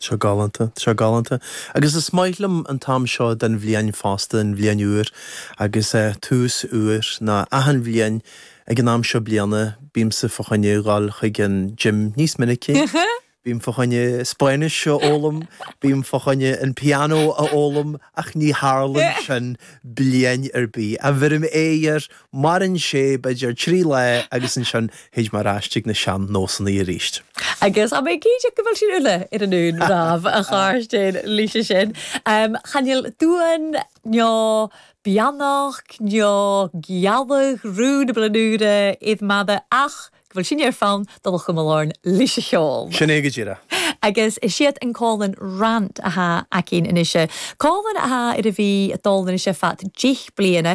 Seo galánta, seo galánta. Agus is maith liom an t-am seo den bhliain fosta, an bhliain úr. Agus tús úr, ná achan bhliain ag an am seo bliana, bímse fá choinne dul chuig an gym níos minicí, bím fá choinne Spáinnis a fhoghlaim, bím fá choinne an pianó a fhoghlaim, ach ní tharlaíonn sin bliain ar bith. Bhuel, maireann Maireann sé b'fhéidir trí lá agus ansin thit mé ar ais chuig na sean-nósanna arís. Agus tha mi cinnteach gu bheil sinn uile air an aon ràmh a chàirdean leis a sin. Chan eil dùn, neo beannachd, neo gealladh, rùn bliadhn' ùr iad mada ach gu bheil sinn air fonn dol cumail oirnn leis a' cheòl. Sin é go díreach. Agus is iad an còmhlan Rant a tha againn a-nis. Còmhlan a tha air a bhith a' dol a-nis fad deich bliadhna.